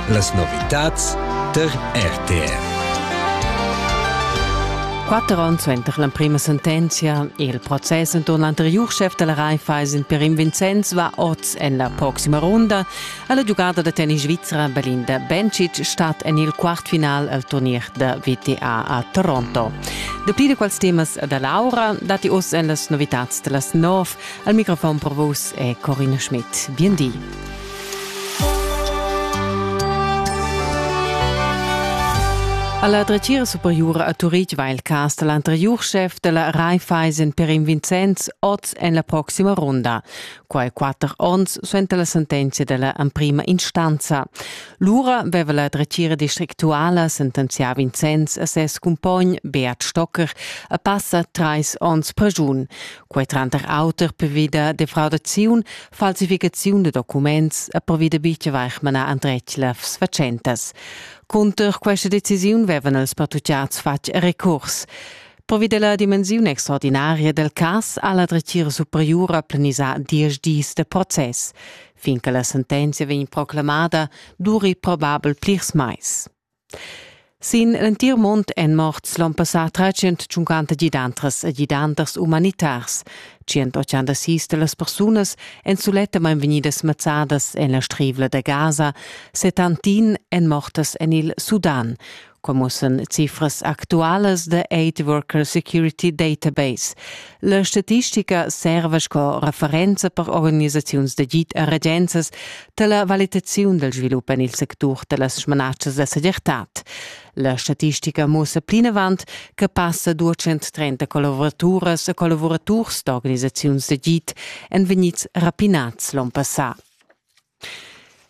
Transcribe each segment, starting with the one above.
Las novitads tar RTR. Quatter onns suenter l'emprima sentenzia e il process enturn l'anteriur chef della Raiffeisen Perim Vincenz va oz en la proxima runda a la giugada da tennis svizra Belinda Bencic stat en il quartfinal al turnier da VTA a Toronto. Dapli da quels temas da Laura dati oz en las novitads da las nov. Al microfon per vos è Corinne Schmidt. Bien di. Alla dretgira superiura a Turitg va il cas dall'anteriur chef della Raiffeisen per in Vincenz oz en la proxima ronda. Quai quatter onns suenter la sentenza della emprima instanza. Lura veva la dretgira districtuala sentenzià Vincenz a ses cumpogn Beat Stocker a passa treis onns per giun. Quei tranter auter per via de defraudaziun Falsificaziun da documents e pervida bitia vaig manar andretg lefs fatschentas. Cunter questa decisiun vevan els pertucciats fatg recurs. Pervida la dimensiun extraordinaria del cas ha la dretgira superiora planisà diesch dis de process. Fin che la sentenzia vegn proclamada, duri probabel plirs mais. Sin l'entir mund èn morts l'onn passà 350 gidantras e gidanters umanitars. 186 da las persunas èn sulettamain vegnidas mazzadas en la strivla da Gaza, 71 èn mortas en il Sudan, commussen cifras actualas da Aid Worker Security Database. La statistica serva sco referenza per organisaziuns d'agid e regenzas da la valitaziun dal svilup en il sectur da las smanatschas da segirtad. La statistica mussa plinavant che passa 230 collavuraturas e collavuraturs d'organisaziuns d'agid èn vegnids rapinads l'onn passà.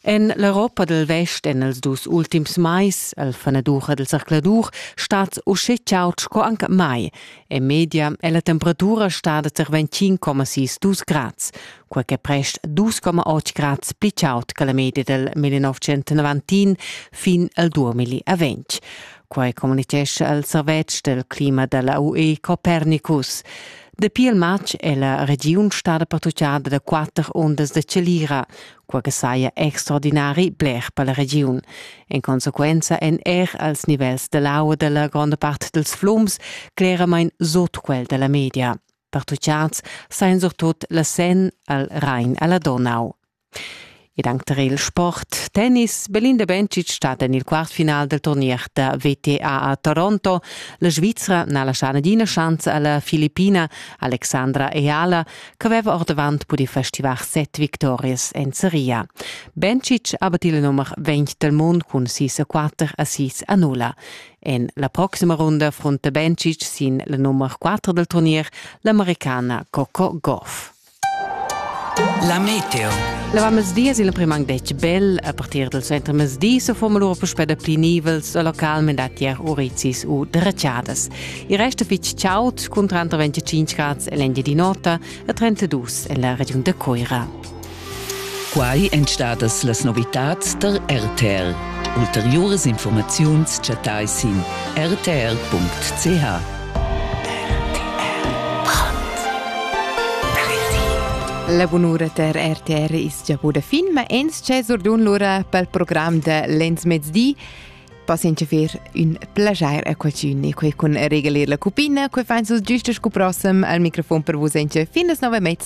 En l'Europa dal Vest en els dus ultims mais, al fanadur dal zercladur, stat uschè chaud sco anc mai. En media è la temperatura stada tar 25,6 dus grads, quai che prest 2,8 grads pli chaud che la media dal 1990 fin al 2020. Quai communitgescha il servetsch del clima della UE Copernicus. Dapi il matg è la regiun stada patrugliada da quatter ondas da chalira, quai che saja extraordinari bler per la regiun. En consequenza èn er als nivels da l'aua da la gronda part dals flums cleramain sut quel da la media. Patrugliads sajan surtut la Sen al Rhein a la Donau. Ed anc tar il sport tennis. Belinda Bencic stat en il quartfinal del turnier da WTA a Toronto. La Svizra n'ha laschà nagina schanza a la Filippina Alexandra Eala ch'aveva ordavant pudì festivar set victorias en seria. Bencic ha battì il numer 20 del mund cun sis a quatter a sis a nulla. En la proxima runda frunta Bencic sin la nummer 4 del turnier l'americana Coco Gauff. La meteo. L'avamesdi es il primang detg bel a partir del suentermezdi so foma lura puspè da pli nivels a localment da tier urizis u dreciadas. Il resto fitg chaud cun tranter 25 grads e l'engia di nota e 32 en la regiun de Coira. Quai èn stadas las novitads der RTL. Ulteriores Informaziuns chattai sin rtl.ch. La bunura ter RTR is gia buda fin, ma ins c'è surdun lura pel program de lenzmezdi. Passen che fer un plagier a qualcun e quei con regalir la cupina, quei fain sus giusto scu prossem al microfon per vos enche fin las 9 mezza.